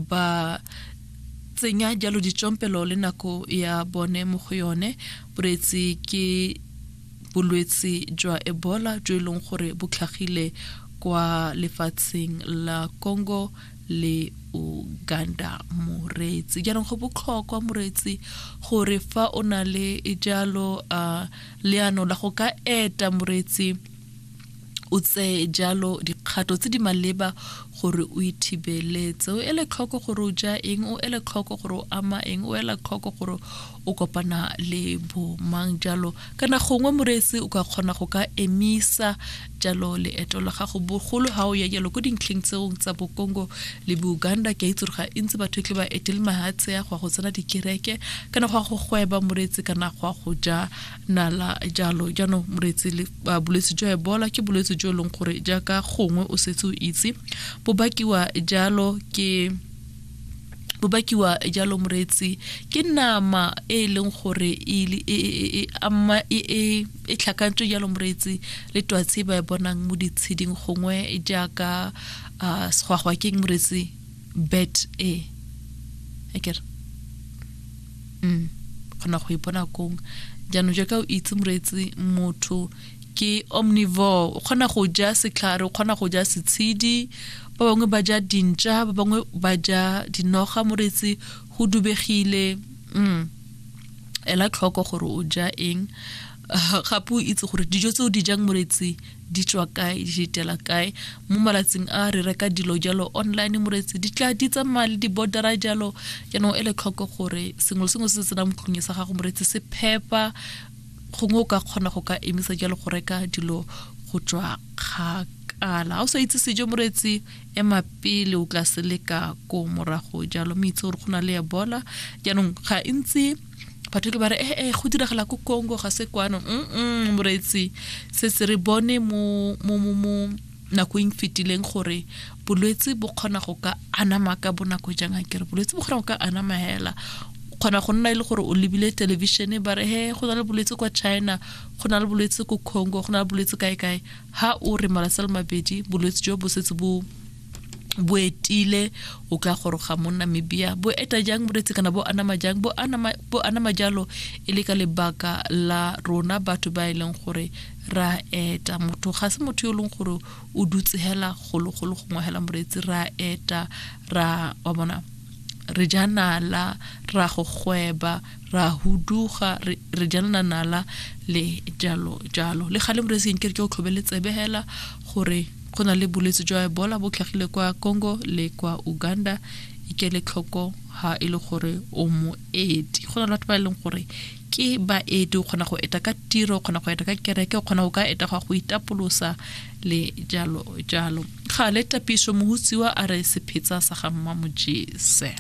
ba tsenya jalo ditsompelo le nako ya bone mo go yone boreetsi ke bolwetsi jwa ebola jo e leng gore bo tlhagile kwa lefatsheng la congo le uganda moreetsi jaanong go botlhokwa moreetsi gore fa o na le jalo uh, leano la go ka eta moreetsi o tseye jalo dikgato tse di maleba gore o ithibeletse o ele tlhoko gore o ja eng o ele tlhoko gore o ama eng o ela tlhoko gore o kopana le bomang jalo kana gongwe moreetsi o ka kgona go ka emisa jalo leeto la gago bogolo ga o ya jalo ko dintlheng tseong tsa bokongo le bouganda ke a itse ga ntse batho e tle ba etele mahatshe ya go ya go tsena dikereke kana go ya go gweba moreetsi kana go ya go ja nala jalo jaanong moreetsi bolwetse jwa ebola ke bolwetse jo e leng gore jaaka gongwe o setse o itse bo bakiwa jalo ke bo bakiwa jalo moreetsi ke nama e e leng gore e, e, e, e, e tlhakantswe jalo moreetsi le twatsi ba e bonang mo ditsheding gongwe jaaka uh, segwagwa keng moreetsi bet e akere mm kgona go ipona kong jaanong jaaka o itse moreetsi motho ke omnivore o kgona go ja setlhare o kgona go ja setshedi ba bangwe ba ja dintša ba bangwe ba ja dinoga moreetsi go dubegile mm ela tlhoko gore o ja eng gape o itse gore dijo tse o di jang moretsi di tswa kae di ditela kae mo malatsing a re reka dilo jalo online moretsi di tla di tsamaya le di-bordera jalo jaanong e le tlhoko gore sengwe le sengwe se se tsenang motlong sa gago moretsi se phepa gongwe o ka kgona go ka emisa jalo go reka dilo go tswa kgakala ga o sa itse sejo moretsi ema pele o tla se leka ko morago jalo mme itse gore go na le ebola jaanong ga ntse batho ke ba re ee eh, eh, go diragala ko congo ga se kwano mm moreetsi se se re bone mo nakong fetileng gore bolwetse bo kgona go ka anama ka bonako jang a kere bolwetse bo kgona go ka anama hela kgona go nna e le gore o lebile television ba re he go na le bolwetse kwa china go na le bolwetse ko congo go na le bolwetse kae kae ha o re malatsi a le mabedi bolwetse jo bo setse bo bo etile o ka goroga mo namibia bo eta jang boretsi kana bo anama jang bo anama, bo anama jalo e le ka lebaka la rona batho ba e leng gore ra eta motho ga se motho yo e leng gore o dutse hela gologolo gongwe hela moretsi ra eta ra wa bona re ja nala ra go gweba ra huduga re jalana nala le jalo jalo le gale moretsi nke re ke o tlhobele tsebe hela gore go na le bolwetse jwa ebola bo tlhagile kwa congo le kwa uganda ikele tlhoko ha e le gore o moeti go na le batho ba e leng gore ke baeti o kgona go eta ka tiro o kgona go eta ka kereke o kgona go ka eta go go itapolosa le jalo jalo ga le tapiso mohutsiwa a re sephetsa sa ga mmamojese